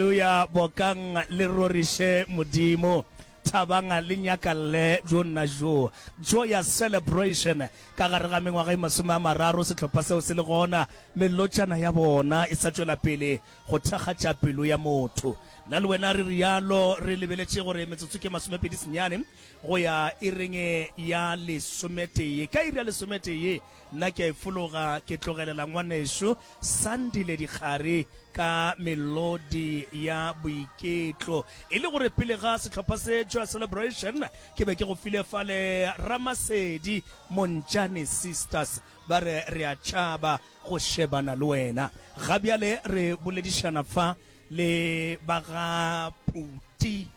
Aleluya, bokang le roriše Modimo, thabang le nyakalle bjo nna bjo. Joyous celebration, ka gare ga mengwaga e masome a mararo sehlopha seo se le gona, melotšana ya bona e sa tšwela pele go thakgatša pelo ya motho. Nna le wena re realo, re lebeletše gore metsotso ke masomepedi senyane go ya iring ya lesometee. Ka iri ya lesometee, Nna ke a e fologa ke tlogelela ngwaneso Sandile dikgare ka melodi ya boiketlo. E le gore pele ga sehlopha se Joy Celebration ke be ke go file fale Ramasedi Montšane Sisters ba re re a tšhaba go shebana le wena. Ga bjale re boledišana fa le ba ga Phuti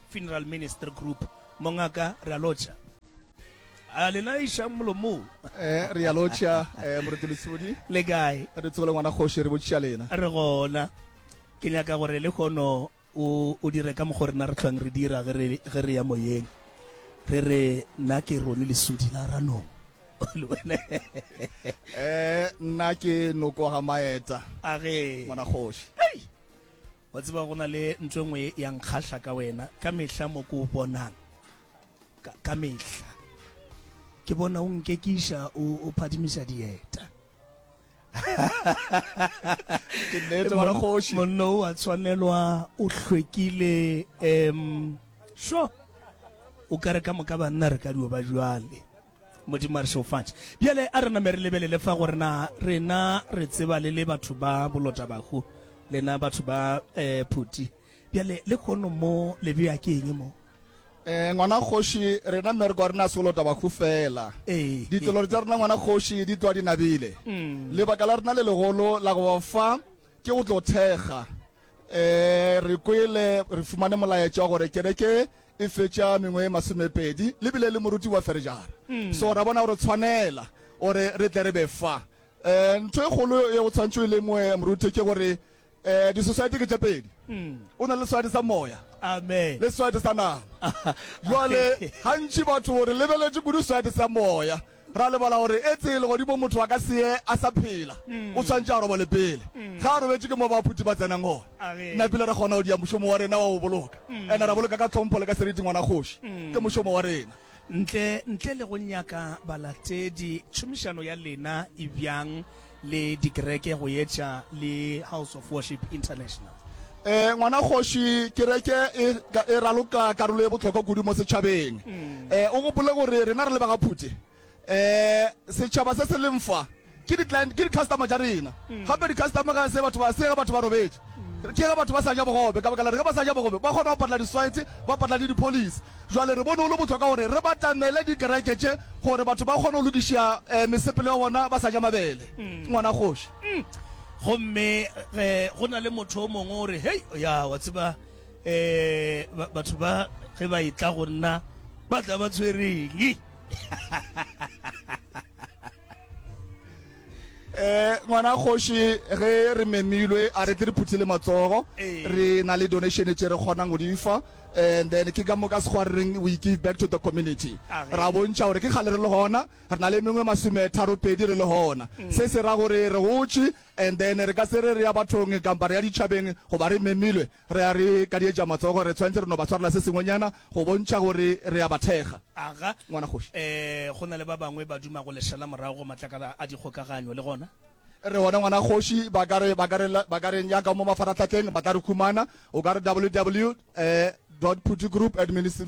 Funeral Ministry Group. Mongaka re a lotšha. a lena iša molomong eh re ya lotšha eh moretelo sibodi le kae re tsogole ngwana kgoši re botšiša lena re gona ke nyaka gore le kgono o dire ka mokgwa rena re tlhwang re dira ge re ya moyeng re re nna ke rone lesodi la ranong eh nna ke noko ga maeta a ge ngwana kgoši Wa tseba go na le ntho e nngwe ya nkgahla ka wena ka mehla mo ke o bonang ka, ka mehla ke bona o nkekiša o, o phadimisa dieta Ke nnete mara kgoši. monno o a tshwanelwa o hlwekile um sho o kare ka moka banna re ka dio ba jwale Modimo a re šeofatše. Bjale a re name re lebelele fa gore na rena re tseba le le batho ba bolotabahu, lena batho ba eh, phuti. Bjale le kgono mo le bea ke eng mo? Eh, ngwana kgoši, rena mme re kwa rena sebolotabahu fela. Ee, Ditlolori tsa rena ngwana kgoši di tloa di nabile. Mm. Lebaka la rena le legolo la go ba fa ke go tlo thekga. Eh, re kwele re fumane molaetša wa gore kereke e fetša mengwe e masomepedi le bile le moruti wa ferežara mm. so ra bona gore tshwanela gore re tle re be fa um ntho e kgolo e go tshwantsho e le moe moruti ke gore um di-society ke tše pedi mm. o na le society sa moya le society sa nama jale gantši batho re lebeletše kudu society sa moya Ra lebala gore etse legodimong motho a ka se ye a sa phela, o swanetše a robale pele. Ge a robetše, ke mo baphuti ba tsenang gona. Nna pele re kgona go dia mošomo wa rena wa go boloka, and ra boloka ka tlhompho le ka seriti ngwana kgoši. Ke mošomo wa rena. Ntle, ntle le go nyaka balatedi, tšhomišano ya lena e bjang le dikereke go etša le House of Worship International. Eh, ngwana kgoši kereke e, e raloka karolo e bohlokwa kudu mo setšhabeng mm. eh, o gopole gore rena re le bagaphute eh, setšhaba se se leng fa ke di-customer tša rena mm. gape di-customer ga se batho ba se ge batho ba robetše mm. ke ge batho ba sa ja bogobe ka baka la re ge ba sa ja bogobe ba kgona go patla di-swite ba patla le di-police Bjale re bone go le bohlokwa gore re batamele dikereke tše gore batho ba kgone go lokiša mesepelo ya bona ba sa ja mabele, ngwana kgoši. Gomme ge go na le motho o mongwe o re, Hei, ya, wa tseba, ba, batho ba ge ba etla go nna ba tla ba tshwereng. eh ngwana kgoši ge re memilwe a re tle re phuthile matsogo ee. re na le donation tše re kgonang go di fa and then ke ka moka sekgwa re reng we give back to the community ah, ra bontšha gore ke kgale re le gona re na le mengwe masome tharo pedi re le gona mm. se se ra gore re gotše and then re ka se re re ya bathong kampa re ya ditšhabeng goba re memilwe Re a re kadietša matsogo, re tshwanetse re no ba swarela se sengwenyana go bontšha gore re a ba thekga. Aga, Ngwana kgoši. E, go na le ba bangwe ba dumago lešela morago go matlakala a dikgokaganyo, le gona. Re gona, Ngwana kgoši. Ba ka re, ba ka re, ba ka re nyaka mo mafarahlahleng, ba tla re humana. O ka re ww. Dot phuthegroup at ministry.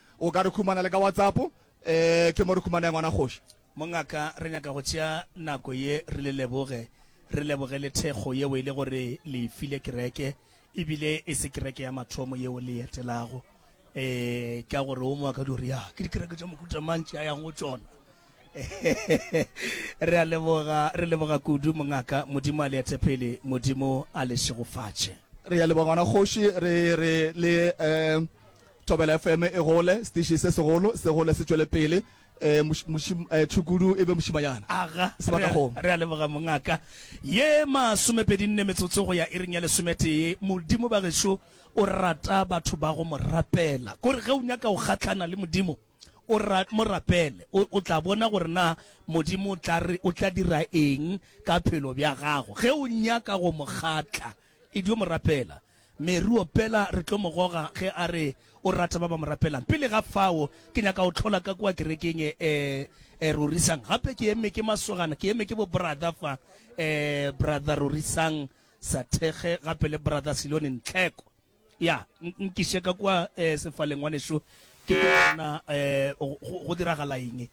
O ka re humana le ka WhatsApp, ee, ke mo re humanaya ngwana kgoši. Mongaka, re nyaka go tšea nako ye re le leboge, re leboge le thekgo yeo e le gore le e file kereke, e bile e se kereke ya mathomo yeo le e etelago, ee, ka gore wo mongaka di o re, Ya, ke dikereke tša mohuta mang tše a yang go tšona? Re a leboga, re leboga kudu mongaka, Modimo a le ete pele, Modimo a le šegofatše. Re a leboga ngwana kgoši, re re le Thobela FM e gole, setiši se segolo se gole se tšwele pele, tšhukudu e be mošimanyana Aga, sebakakgomo. Re a leboga mongaka. Ye masomepedi nne metsotso go ya iring ya lesometee, Modimo bagešo o rata batho ba go mo rapela. Ko re ge o nyaka go gahlana le Modimo, O ra, mo rapele, o, o tla bona gore na Modimo o tla re, o tla dira eng ka phelo bja gago. Ge o nyaka go Mo kgatla, e dio mo rapela. Mary opela, re tlo mo goga ge a re o rata ba ba mo rapelang. Pele ga fao, ke nyaka go hlola ka kua kerekeng e, e, e, Rorisang. Gape ke eme ke masogana, ke eme ke bo-brother fa, e, Brother Rorisang Sathekge, gape le Brother Silone Ntlheko. Ya, nkiše ka kua eh, sefaleng, ngwanešu. Ke ke bona eh, go, go diragala eng.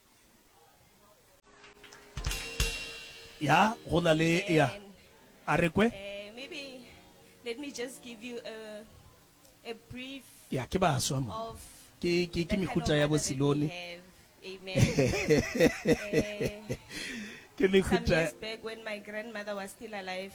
Ya, go na le, ya, a re kwe. Eh, maybe let me just give you a, a brief ya ke baswa mo ke ke ke mehuta ya bosilone ke mehuta when my grandmother was still alive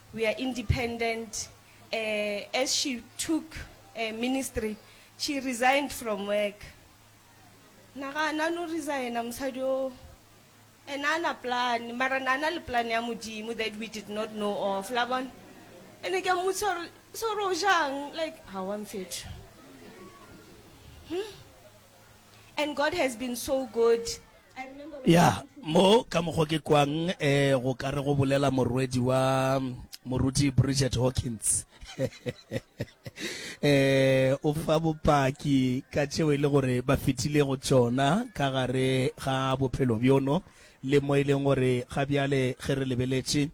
We are independent, eh, as she took eh, ministry, she resigned from work. Nagana no resigna mosadi o and a na plan mara na na le plan ya modimo that we did not know of la bona and ke mmotsa gore so ro jang like ha wa mfetho hmm? And God has been so good. I remember when ya mo ka mokgwa ke kwang eh go ka re go bolela morwedi wa mm, moruti bridget hawkins eh o fa bopaki ka tšeo e le gore ba fetile go tšona ka gare ga bophelo bjono le mo e leng gore ga bjale ge re lebeletše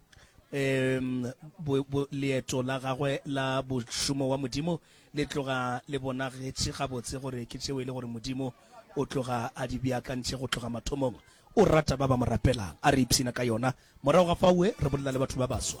um leeto la gagwe la bošomo wa modimo Le tloga le bonagetše gabotse gore ke tšeo e le gore Modimo o tloga a di beakantše go tloga mathomong. O rata ba ba mo rapelang. A re ipshina ka yona. Morago ga fao re bolela le batho ba baswa.